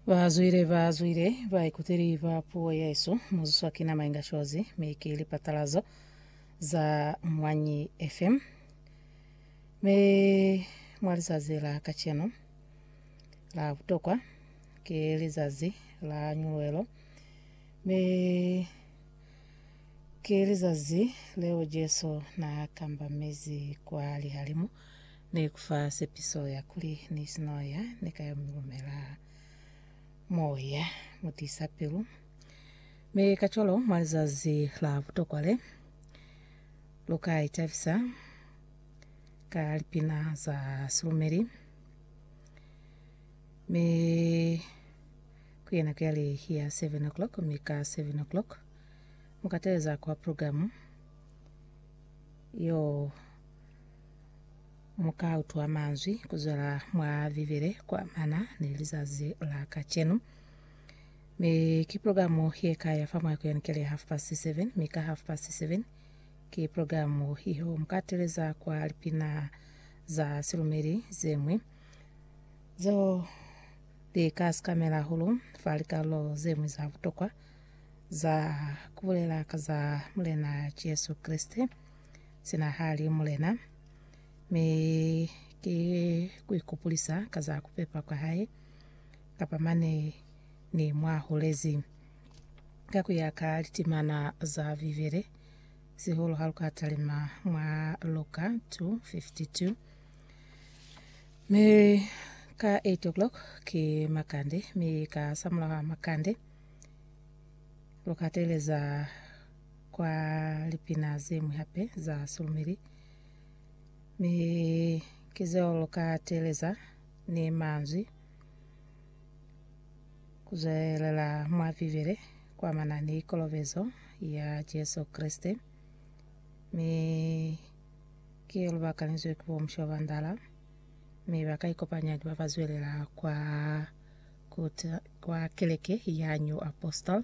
Bazwile bazwile baikuteli ba puo yesu muzwiswa ki nama inga cozi mi ki lipatalazo za Mwanyi FM mi mwa lizazi la kacenu la butokwa ki lizazi la nyuluelo mi ki lizazi leo Jesu na kambamizi kwa lihalimu Ne ku fa sepiso ya kuli, Ni si no ya, ni ka yo mi lumela Moya mu tisa pilu. Mi kacwalo, mwa lizazi la butokwa le, lu ka itabisa ka lipina za silumeli. Mi ku ye nako ya li ya seven o'clock, mi ka seven o'clock mu ka teeleza kwa programu yo Mu ka utwa manzwi ku zwela mwa Bibele kwa mana ni lizazi la kacenu. Mi ki programu ye ka ya fa mwa ku yanukele half past seven, mi ka half past seven ki programu iyo mu ka teleza kwa lipina za silumeli ze ñwi zo li ka sikamela hulu fa likarolo ze ñwi za butokwa za ku bulela ka za Mulena Jesu Kreste Sina hali, Mulena, mi ki kuikupulisa ka za kupepa kwa hae, kapa mane Ni mwa hulezi. Ka kuya ka litimana za Bibele, sihulu ha lu ka talima mwa Luka 2:52, mi ka eight o'clock ki makande, mi ka samulaha makande lu ka teeleza kwa lipina zeñwi hape za sulumeli, mi ki zeo lu ka teeleza ni manzwi ku zwelela mwa Bibele kuamana ni kolobezo ya Jesu Kreste, mi ki yo lu bakanizwe ki bo Mushoa ba Ndala, mi ba ka ikopanya ni ba ba zwelela kwa, ku ta, kwa keleke ya New Apostle.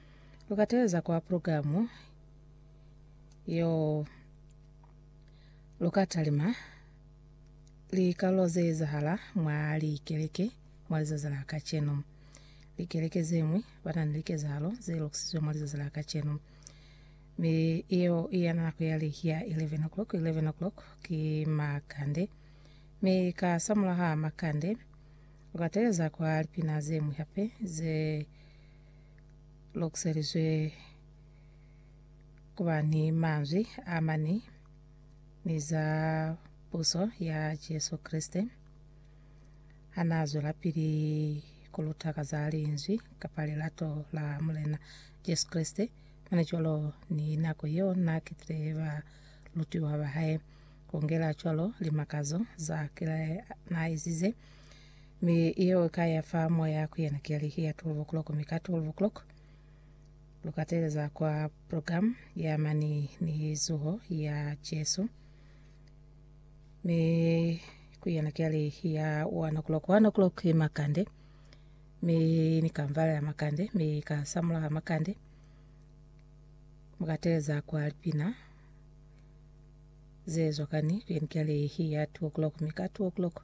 Lukateza kwa programu yo lukatalima likalo zeezahala mwa likeleke mwa lizazi la kacenu. Likeleke zemwi bana ni likezahalo ze lokisizwe mwa lizazi la kacenu. Mi iyo iya nako ya lihi ya 11 o'clock, 11 o'clock ki makande. Mi ka samulaha makande lukateleza kwa lipina zemwi hape ze lokuselizwe kuba ni manzwi a mani ni za puso ya Jesu Kreste hana zwelapili kuluta ka za linzwi kapa lilato la Mulena Jesu Kreste, mane cwalo ni nako yeo na ketile ba lutiwa ba hae, kungela cwalo limakazo za kile na ezize. Mi yeo ikaya fa moya ku yena keli, Hiya 12 o'clock, mi ka 12 o'clock lukateleza kwa program ya mani ni zuho ya Jesu. Mi ku yena keli, Hiya 1 o'clock, 1 o'clock makande. Mi nikamvalela makande, mi ka samula makande. Mukateleza kwa lipina zezwa kani ku yena keli, Hiya 2 o'clock, mi ka 2 o'clock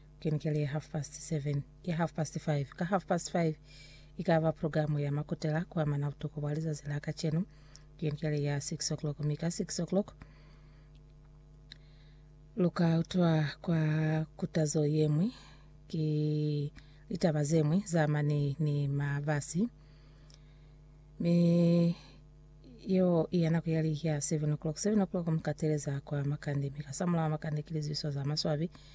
Ke ni kele half past seven, ke half past five. Ka half past five, i ka ba programu ya makutela kwa mana butoko bwa lizazi la kacenu. Ke ni kele ya six o'clock, mi ka six o'clock, lu ka utwa kwa kutazo yemwi ki litaba zemwi za mane ni mabasi. Mi yeo iya nako yali ya seven o'clock. Seven o'clock mi ka teleza kwa makande, mi ka samula makande ki lizibiso za maswabi.